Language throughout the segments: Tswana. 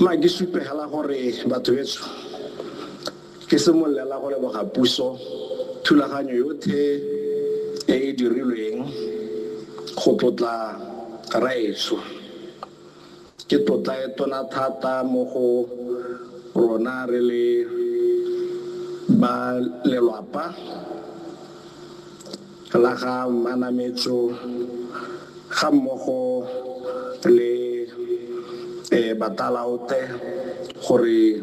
Ma ke supegela gore batho betso ke simololela go leboga puso thulaganyo yothe e e dirilweng go tlotla raetsho. Ke tlotla e tona thata mo go rona re le ba lelwapa. la ga Mmanametso ga mmogo le Batalaote gore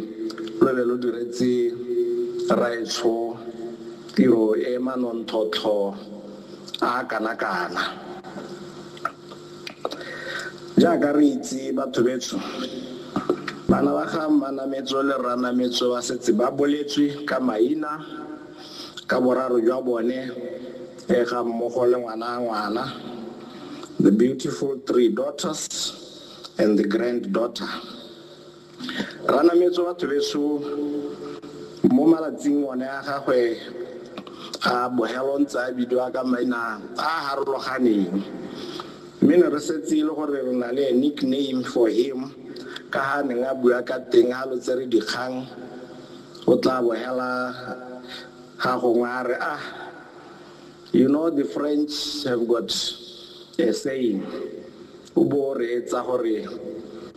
lo be lo diretse Rraetsho tiro e manontlhotlho a a kana-kana. Jaaka re itse batho betsho, bana ba ga Mmanametso le Rranametso ba setse ba boletswe ka maina, Ka boraro jwa bone e ga mmogo le ngwana a ngwana, the beautiful three daughters and the grand daughter. Ranametso batho beso mo malatsing one a gagwe a bogelo ntse a bidiwa ka maina a harologaneng mme ne re setse e le gore re na le a nickname for him ka ha neng a bua ka teng ha lo tsere dikgang O tla bo hela ha gongwe a re, Ah, you know the French have got a saying, o bo o reetsa gore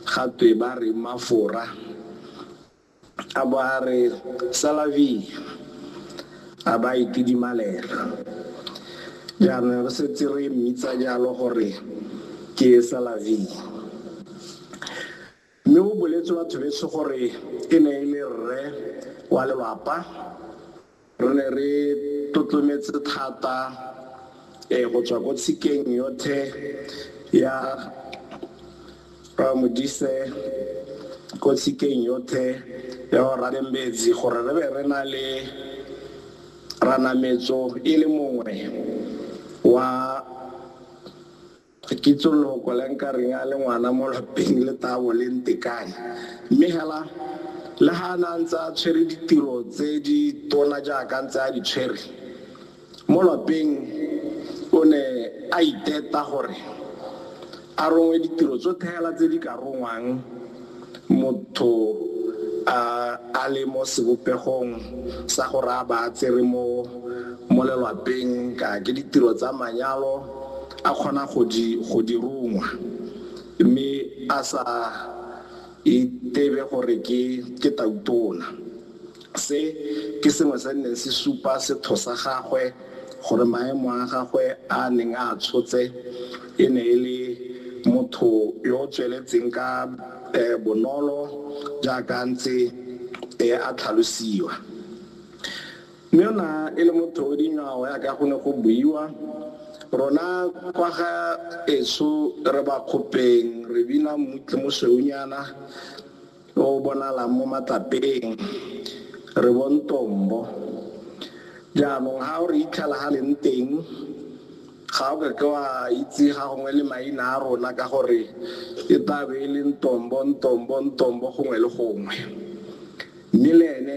ga twe ba re mafora, a bo a re, C'est la vie, a ba a itidimalela. Jaanong re setse re mmitsa jalo gore ke C'est la vie. Mme go boletswe batho betsho gore e ne e le rre wa lelapa. Re ne re tlotlometse thata eh, go tswa ko tshikeng yothe ya Ramodise, ko tshikeng yothe ya go Radembetsi gore re be re na le Ranametso e le mongwe wa Ga ke itse loko le nka reng a le ngwana mo lapeng le tabo le ntekane. Mme hela, le ha a ne a ntse a tshwere ditiro tse di tona jaaka ntse a di tshwere mo lapeng, o ne a iteta gore a rongwe ditiro tsotlhe hela tse di ka rongwang Motho a a le mo sebopegong sa go raya ba a tsere mo mo lelwapeng ka ke ditiro tsa manyalo a kgona go di go di rungwa mme a sa itebe gore ke ke tautona. Se ke sengwe se neng se supa setho sa gagwe gore maemo a gagwe a a neng a a tshotse e ne e le motho yo o tsweletseng ka bonolo jaaka a ntse a tlhalosiwa. Mme o ne e le motho o dingwao jaaka go ne go buiwa. Rona kwa ga etsho re Bakgopeng re bina Mmutle Mosweunyana, o o bonalang mo matlapeng, re bo ntombo. Jaanong ga o re itlhela ga leng teng, ga o kake wa itse ga gongwe le maina a rona ka gore e tla be e le ntombo, ntombo, ntombo gongwe le gongwe. Mme le ene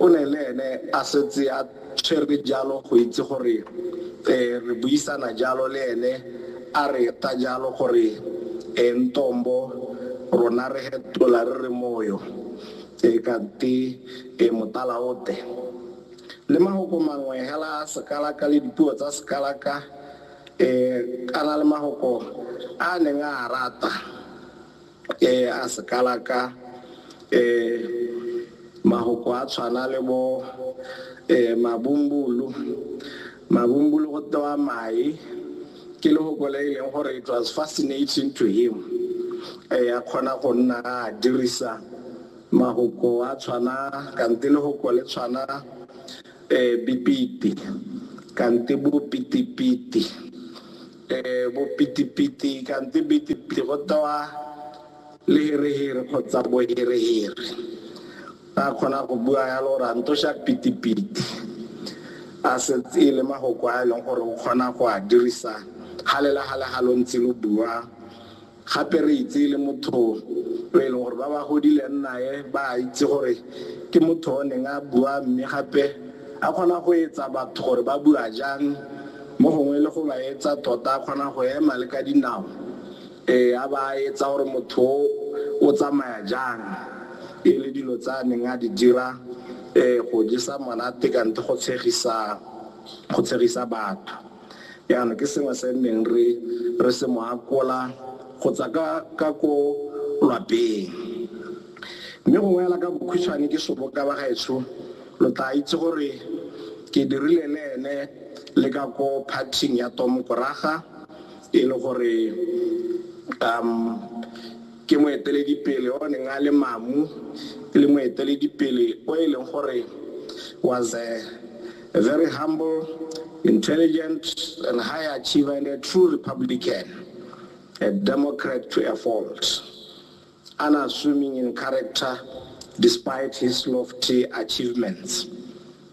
o ne le ene a setse a tshwere jalo go itse gore um re buisana jalo le ene a re ta jalo gore um ntombo rona re hetola re re moyo um kante um motala o te le mahoko mangwe hela a sekalaka le dipuo tsa sekalaka um kana le mahoko a neng a rata e a se kalaka mahoko a tshwana le bo mabumbulu mabumbulu go tewa mae ke lehoko le e leng gore it was fascinating to him a kgona go nna a dirisa mahoko a tshwana kante lehoko le tshwana um bipiti kante bo pitipiti E, bopitipiti kante pitipiti go tewa lehereheri kgotsa bohereheri. A kgona go bua yalo gore a ntosha pitipiti. A setse e le magoko a e leng gore o kgona go a dirisa ga le la ga le ga lo ntse lo bua Gape re itse e le motho yo e leng gore ba ba godileng nae ba a itse gore ke motho o neng a bua mme gape a kgona go etsa batho gore ba bua jang, mo gongwe le go ba etsa tota a kgona go ema le ka dinao, ee, a ba a etsa gore motho o o tsamaya jang. E le dilo tse a neng a di dira, ee, go jesa monate kante go tshegisa, go tshegisa batho. Jaanong ke sengwe se nneng re re se mo akola go tswa ka ka ko lwapeng. Mme gongwe fela ka bokhutshwane ke soboka ba gaetsho lo tla itse gore ke dirile le ene le ka ko party-ing ya Tom Koraga e le gore um Ke moeteledipele o neng a le mamu e le moeteledipele o e leng gore was a very humble, intelligent and high achiever and a true Republican, a Democrat to a fault, unassuming in character despite his lofty achievements.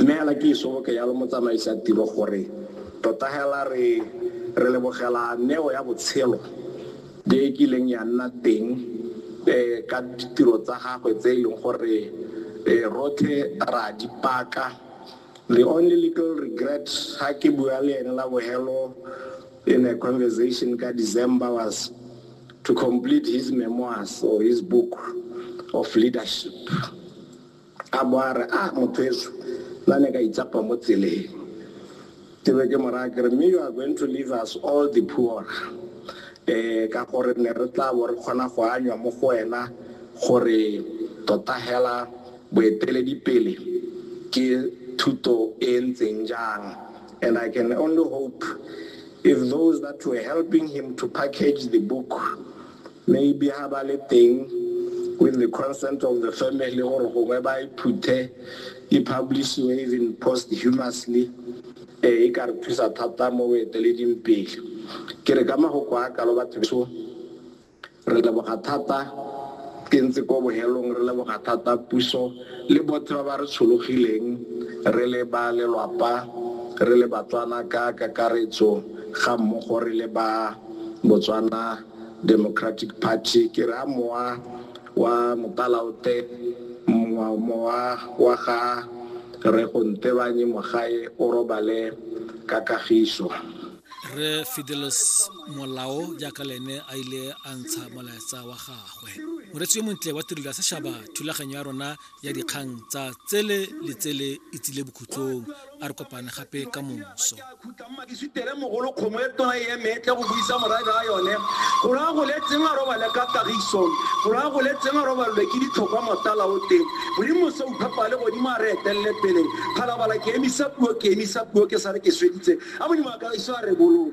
Mme hela ke iso ke yalo motsamaisi a tiro gore tota hela re re lebogela neo ya botshelo e e kileng ya nna teng ka ditiro tsa gagwe tse e leng gore rothe ra di paka. The only little regret ha ke bua le ene la bohelo in a conversation ka December was to complete his memoirs or his book of leadership. A bo a re, A, mothweso, nna ne ka itsapa mo tseleng. Ke be ke mo raya ke re, Mme you are going to leave us all the poorer. Um ka gore ne re tla bo re kgona go anywa mo go wena gore tota hela boeteledipele ke thuto e e ntseng jang. And I can only hope if those that were helping him to package the book Maybe ha ba le teng with the consent of the family gore gongwe ba e phuthe e publishiwe even posthumously um e ka re thusa thata mo boeteleding pele ke re ka magoko a kalo batho beso re leboga thata ke ntse ko bohelong re leboga thata puso le botlhe ba ba re tshologileng re le ba lelwapa re le batswana ka kakaretso ga mmogo re le ba Botswana Democratic Party, ke re a mowa wa Mopalaote, mowa mowa wa ga Rre Go Ntebanye Mogae o robale ka kagiso. Rre Fidelis Molao jaaka le ene a ile a ntsha molaetsa wa gagwe. Moretsi yo montle wa tirelo ya sešaba, thulaganyo ya rona ya dikgang tsa tsele le tsele e tsile bokhutlong a re kopane gape ka moso mogolo kgomo e tona e emetle go buisa morabe a yone go raya go le tseng a robale ka tagiso go raya go le tseng a robalelwe ke ditlhokwa motala o teng modimo se uphapa le godimo a re etelele pele phalabala ke emisa puo ke emisa puo ke sa re ke sweditse a modimo a kagiso a re bolong